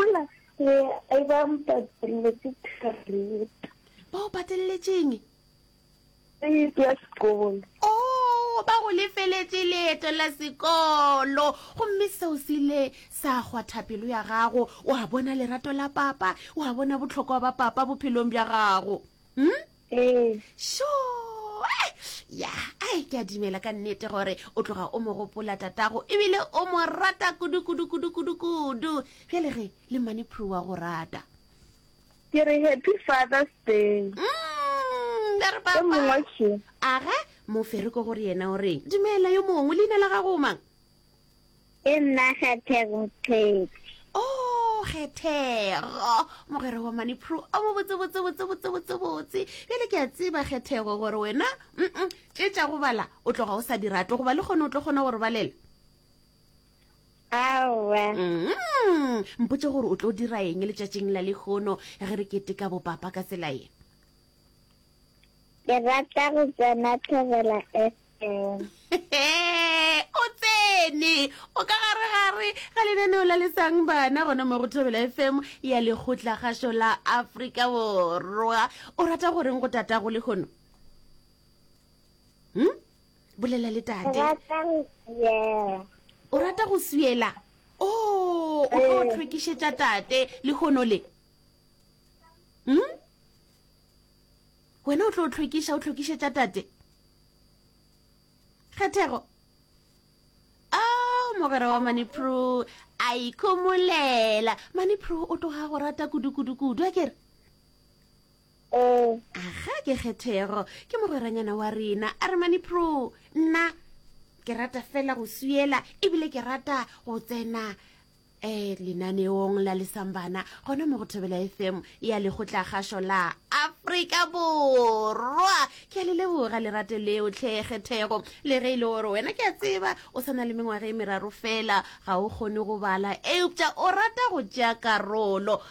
Gopola, re a eba mpateletse kareta. Ba o patelletšeng? Karete ya sekolo. Oo, ba go lefeletše leeto la sekolo. Gomme seo se ile sa kgwatha pelo ya gago. O a bona lerato la papa, o a bona bohlokwa ba papa bophelong bja gago. Hm? ee sho ya ai ke a dimela ka nnete gore o tloga o mo gopola tatago ebile o mo rata kudu-kudu-kudu-kudu-kudu bjale ge le mmane phuru wa go rata ke re happy father's day mm, re papa aga mofereko gore yena o reng dumela yo mongwe leina la gago mang Ke nna Kgethego Qhedi. Oh, Kgethego, mogwera wa mane Pru o mo botse botse botse botse botse botse. Bjale ke a tseba Kgethego gore wena mm tše tša go bala o tloga o sa di rate goba le kgone o tlo kgona gore balela. Aowa. Mm, mpotše gore o tlo dira eng letšatšing la lehono ge re keteka bopapa ka tsela ye. Ke rata go tsena Thobela FM. o tsene o ka gare gare ga lenaneo la letsang bana gona mo go thobela fm ya lekgotlagašo la afrika borwa o rata goreng go tata go lekgono hm bolela le tate o rata go siela o oh, o tlo tlhwekišetša tate lekgono le hm wena o tlo o tlhwekiša o tlhwekišetša tate kgethego o oh, mogwera wa manipro a ikhomolela manipro o tloga go rata kudukudukudu a kere ee aga ke kgethego ke mogweranyana wa rena a re manipro nna ke rata fela go suela ebile ke rata go tsena um lenaneong la lesambana gona mo go thobela fm ya lekgotla gašo la afrika borwa ke a le leboga lerato leo tlhekgethego le ge e le gore wena ke a tseba o sa na le mengwaga e meraro fela ga o kgone go bala eupša o rata go tšea karolo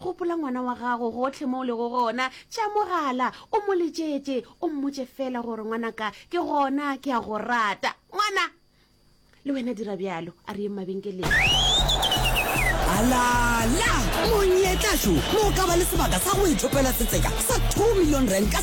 Gopola ngwana wa gago gohle mo o lego gona. Tšea mogala, o mo letšetše, o mmotše feela gore, Ngwanaka, ke gona, ke a go rata. Ngwana! Le wena dira bjalo. A re yeng mabenkeleng. Alala! Monyetla jo mo o ka ba le sebaka sa go ithopela setseka sa 2 million rand ka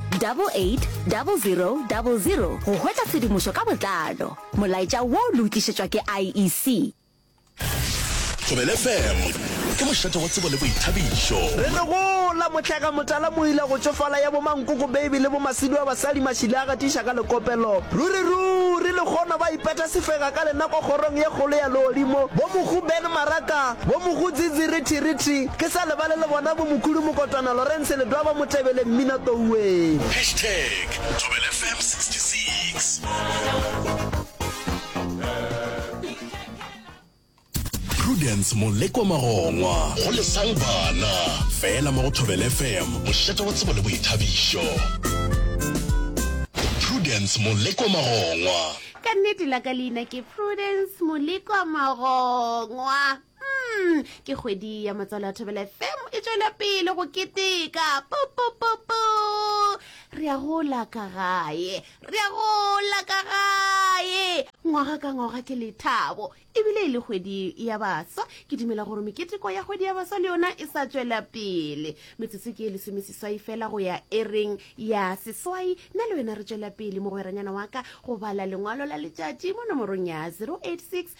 880000 go hwetša tshedimošo ka botlalo. Molaetša wo le o tlišetšwa ke IEC. Thobela FM ke mošate wa tsebo le boithabišo. Re no gola, Motlega Motala Moila go tšofala ya bo Mankoko Baby le bo Masidu a basadi Mašile a gatiša ka lekopelo Ruri ruri lekgono ba ipeta sefega ka lenako kgorong ye kgolo ya legodimo Bo Mohu Ben Maraka, Bo Mohu Dzidzi Rithi Rithi, Ke sa lebale le bona bo Mokhudu Mokotwana, Lawrence Ledwaba ba mo tebele mmina touwee. Hashtag Thobela FM 66. Prudence Molekwa Magongwa, go lesang bana, fela mo go Thobela FM, mošate wa tsebo le boithabišo. Prudence Molekwa Magongwa. Ka nnete la ka leina ke Prudence Molekwa Magongwa. Mm, ke kgwedi ya matswalo a thobela fm e tswela pele go keteka popopopo re ya gola ka gae re ya gola ka gae ngwaga ka ngwaga ke lethabo ebile e le kgwedi ya baswa ke dumela gore meketeko ya kgwedi ya baswa le yona e sa tswela pele metsotso ke e lesomeseswai fela go ya ereng ya seswai nna le wena re tswela pele mogweranyana wa ka go bala lengwalo la letšatši mo nomorong ya 086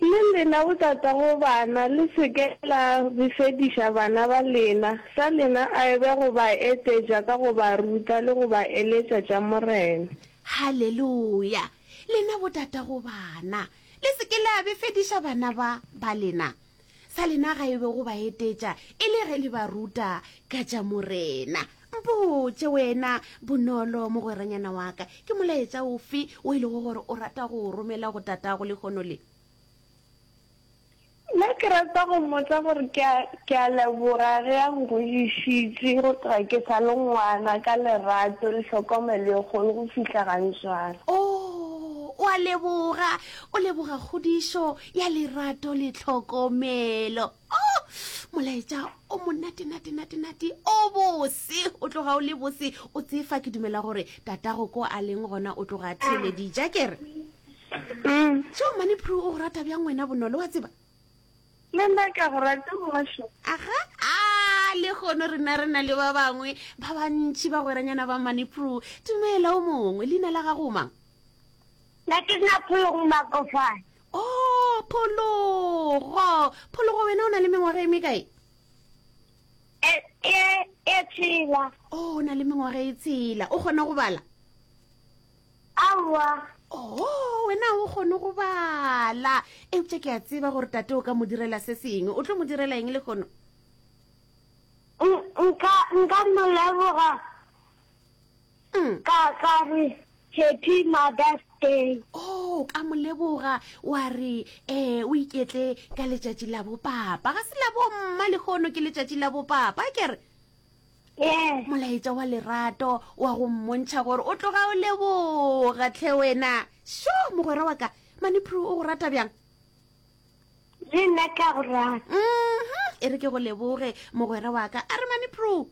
Le lena botatago bana, le se ke la befediša bana ba lena, sa lena e be go ba etetša ka go ba ruta le go ba eletša tša Morena. Haleluya! Lena botatago bana, le se ke la befediša bana ba ba lena, sa lena ga e be go ba etetša e le ge le ba ruta ka tša morena mpotše wena bonolo mogweranyana wa ka ke molaetša ofe o e lego gore o rata go o romela go tatago lekgono le nna ke rata go mmotsa gore ke a leboga ge a nkwešišitše go tloga ke sa le ngwana ka lerato le hlokomelo e kgolo go fihla ga ntswara o oh, o a leboga o leboga kgodišo ya lerato le tlhokomelo oh molaetša o monate nate nate nate o bose o tloga o le bose o tsefa ke dumela gore tatago ko a leng gona o tloga theledija kere mm. jo mane pru o go rata bjang wena bonolo wa tseba le nna ka go rata mošo aga a le kgono rena re na le ba bangwe ba bantšhi ba gweranyana ba mane pru dumela o mongwe leina la gago mang Na ke nna phologo makofane o oh, phologo phologo wena o na le mengwaga e mekae e, e, e tshela o oh, na le mengwaga e tshela o kgona go bala aowa o oh, wena o kgone go bala eupša ke a tseba gore tate o ka mo direla se sengwe o tlo mo direla eng le kgono nka nka moleboga Mm. Ka ka re, Happy Mother's Day. Oh, ka mo leboga, wa re, eh, o iketle ka letšatši la bopapa. Ga se la bomma lehono ke letšatši la bopapa, ke re? Yes. molaetša wa lerato wa go mmontšha gore o tloga o leboga tlhe wena sho mogwera wa ka manipro o go rata bjang le nna ka go rata mm-hmm. e re ke go leboge mogwera wa ka a re manipro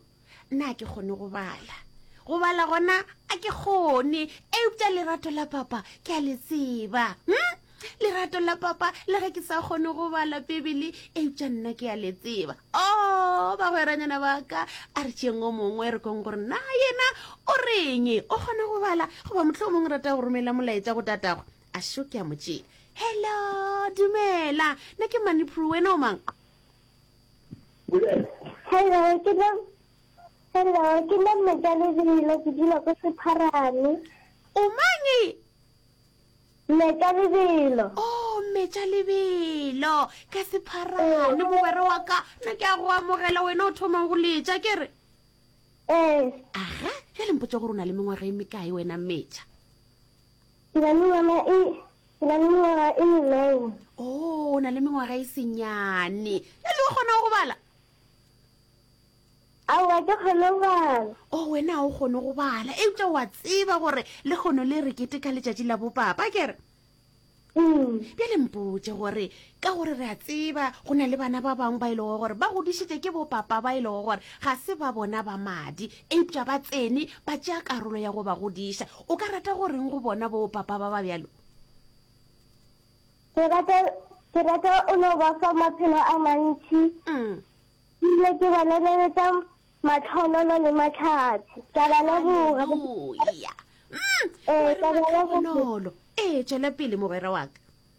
Nna a ke kgone go bala. Go bala gona a ke kgone, eupša lerato la papa ke a le tseba. Hm? Lerato la papa le ge ke sa kgone go bala Bibele, eupša nna ke a le tseba. O, oh, bagweranyana ba ka, a re tšeeng o mongwe re kong gore na yena o reng, o kgona go bala, goba motlho o mongwe rata go romela molaetša go tatagwe. A šo ke a mo tšea. Hello, dumela, nna ke Manipru, wena o mang? Hello, ke le Hello, ke le mmoja le bile ke dula ko Sepharane. O mang e? Mmetša lebelo. Oh, mmetša lebelo. Ka Sepharane mogwera wa ka. Nna ke a go amogela wena o thomang go letša ke re. Eh. Aha, ya lempotša gore o na le mengwaga e mekae wena mmetša? Ke na le ngwana e, ke na le mengwaga e le nine. Oh, o na le mengwaga e senyane. Ya le o kgona go bala? Aowa, ke kgone go bala. Oh, wena ha o kgone go bala. Eupša wa tseba gore le kgono le re keteka letšatši la bopapa, ke re? Mm. Bjale mpotše gore ka gore re a tseba go na le bana ba bangwe ba e lego gore ba godišitše ke bopapa ba e lego gore ga se ba bona ba madi eupša ba tsene ba tšea karolo ya go ba godiša o ka rata go reng go bona bopapa ba ba bjalo ke rata ke rata o no ba fa maphelo a mantši mm. ile ke ba lebeletsa matlhonono le matlhatsi ka ba leboga ee ka ba leboga ee tšwela pele mogwera wa ka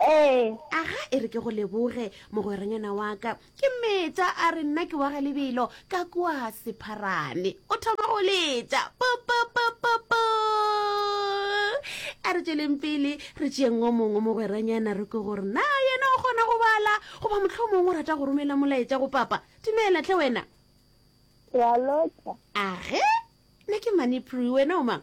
Ee. Aga e re ke go leboge, mogweranyana wa ka. Ke metša a re nna ke wa ga lebelo ka kua sepharane. O thoma go letša. Popopopopo! A re tšweleng pele re tšeeng o mongwe mogweranyana re ko gore na yena o kgona go bala goba motlho mongwe o rata go romela molaetša go papa. Dumela tle wena. Ke a lotša. Age, nna ke Manipri, wena o mang?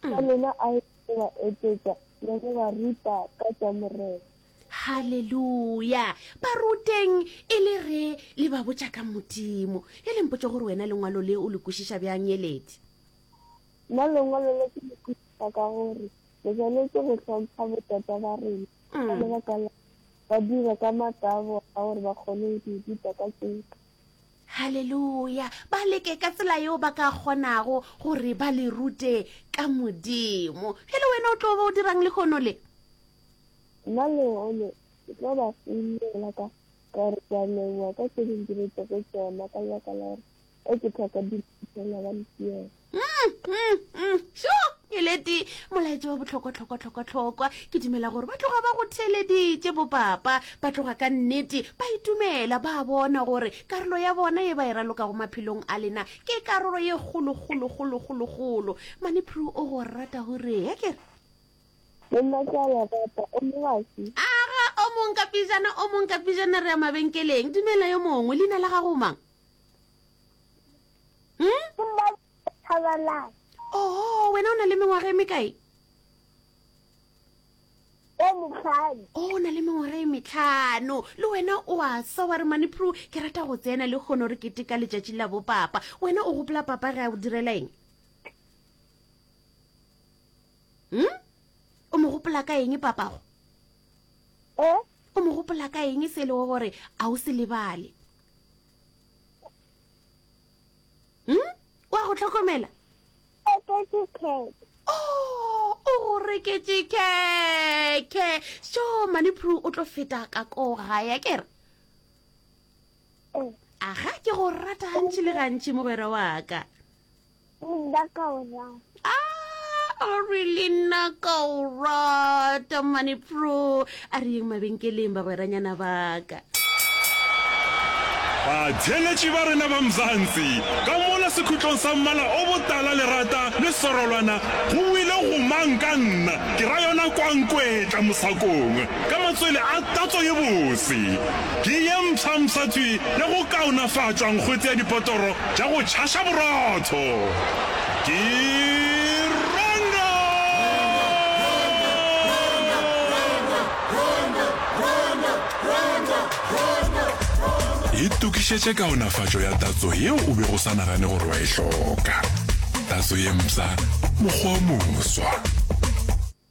ka mm. lena a e ba etetša le go ba ruta ka tša morena halleluja ba ruteng e le re le ba botša ka modimo e lempotse gore wena lengwalo le o le kwešiša bjang yeledi nna lengwalo le ke le kwešiša ka gore le tshwanetse go hlompha botata ba rena ka mm. lebaka la ba dira ka matabo a gore ba kgone go di ruta ka tseka Haleluya! Ba leke ka tsela yeo ba ka kgonago gore ba le rute ka Modimo. Bjale wena o tlo ba o dirang lehono le? Nna lehono ke tlo ba founela ka ka re ke a leboga ka tse dingwe ke re tsoko tsona ka lebaka la gore e ke tlhoka diphuthela ba le siela. sho e lete molaetša wa bohlokwahlokwahlokwahlokwa ke dumela gore ba tloga ba go theeleditše bopapa ba tloga ka nnete ba itumela ba bona gore karolo ya bona e ba e raloka go maphelong a lena ke karolo ye kgolokgolokgolokgolokgolo mane pru o go rata gore ya kere aga o mong ka pijana o mong ka pijana re ya mabenkeleng dumela yo mongwe leina la gago mang hmm? ke mma thabalane oho wena o na le mengwaga e mekae e metlhano o oh, na le mengwaga e metlhano le wena o a sa wa re manipro ke rata go tsena le kgone gore kete ka letšatši la bopapa wena o gopola papa ge a go direla eng hmm? o mo gopola ka eng papago e o mo gopola ka eng se e le gore a o se lebale hmm? wa go tlhokomela oh, o go reketse keke so manipru o tlo feta ka ko gaya kere aga ke go rata gantši le gantši mogwera wa ka Nna ka o rata. Ah, oh really nna ka o rata mane pro. A re yeng mabenkeleng bagweranyana baka. Batheeletši ba rena ba Mzansi, ka mola sekhutlong sa mmala o botala lerata le sorolwana, go wile go mang ka nna, ke ra yona kwankwetla mosakong, ka matswele a tatso ye bose, ke ye mpsha-mpsha tswi ya go kaonafatšwa nkgwetse ya dipotoro tša go tšhaša borotho ke rona! Itokišetše kaonafatšo ya tatso yeo o bego o sa nagane gore wa e hloka. Tatso ye mpsha, mokgwa o moswa.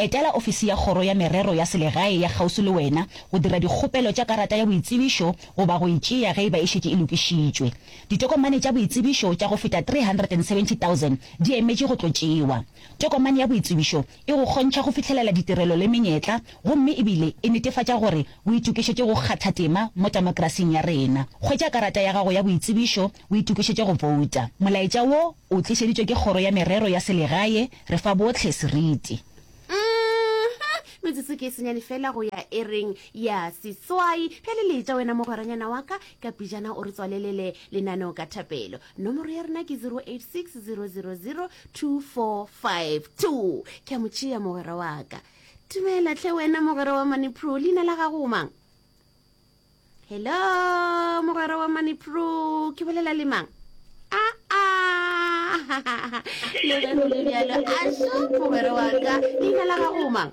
Etela ofisi ya Kgoro ya Merero ya Selegae ya kgauswi le wena go dira dikgopelo tša karata ya boitsebišo goba go e tšea ge e ba e šetše e lokišitšwe. Ditokomane tša boitsebišo tša go feta 370,000 di emetše go tlo tšewa. Tokomane ya boitsebišo e go kgontšha go fihlelela ditirelo le menyetla gomme e bile e netefatša gore o itokišetše go kgatha tema mo temokrasing ya rena. Hwetša karata ya gago ya boitsebišo o itokišetše go bouta. Molaetša wo O tlišeditšwe ke Kgoro ya Merero ya Selegae, re fa bohle seriti. Uhmm, metsotso ke e senyane fela go ya ereng ya seswai. Bjale le etša wena mogweranyana wa ka, ka pejana o re tswalelele lenaneo ka thapelo. Nomoro ya rena ke 0860002452. Ke a mo tšea mogwera wa ka. Dumela tlhe wena mogwera wa Maniprue, leina la gago o mang? hello mogwera wa manipro ke bolela le mang aa le ge go le bjalo a so mogwera wa ka leina la gago mang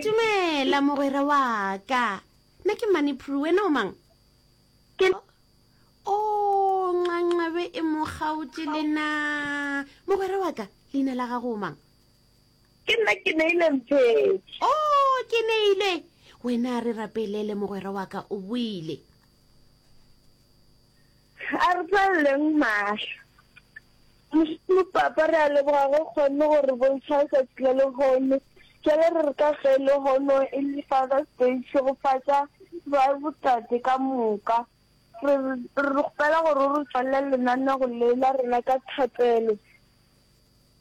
dumela mogwera wa ka nna ke manipro wena o mang o nxanxabe e mo kgaotše lena mogwera wa ka leina la gago o mang Ke nna ke neile mphetši. O, oh, ke neile. Wena re rapelele mogwera wa ka o buile. A re tlaleleng mahlo. Mošomo papa re a leboga go kgonne go re bontšha letsatsi la lehono. Jale re re ka ge lehono e le Father's Day tšhegofatša ba botate ka moka. Re re kgopela gore o re tswalela lenanego le la rena ka thapelo.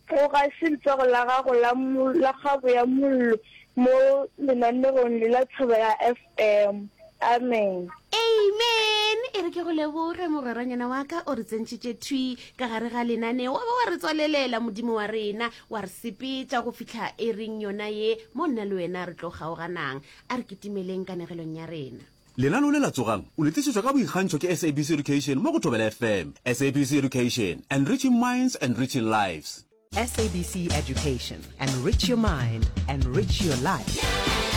Go ga se letsogo la gago la la kgabo ya mollo mo lenanegong le la Thaba ya FM. Amen. Amen! E re ke go leboge, mogweranyana wa ka, o re tsentšitše thwi ka gare ga lenaneo, wa ba wa re tswalelela, Modimo wa rena, wa re sepetša go fihla e reng yona ye, mo nna le wena re tlo kgaoganang. A re kitimeleng kanegelong ya rena. Lenaneo le la Tsogang! o le tlišetšwa ka boikgantšho ke SABC Education mo go Thobela FM. SABC Education, Enriching Minds, Enriching Lives. SABC Education, Enrich your mind, enrich your life.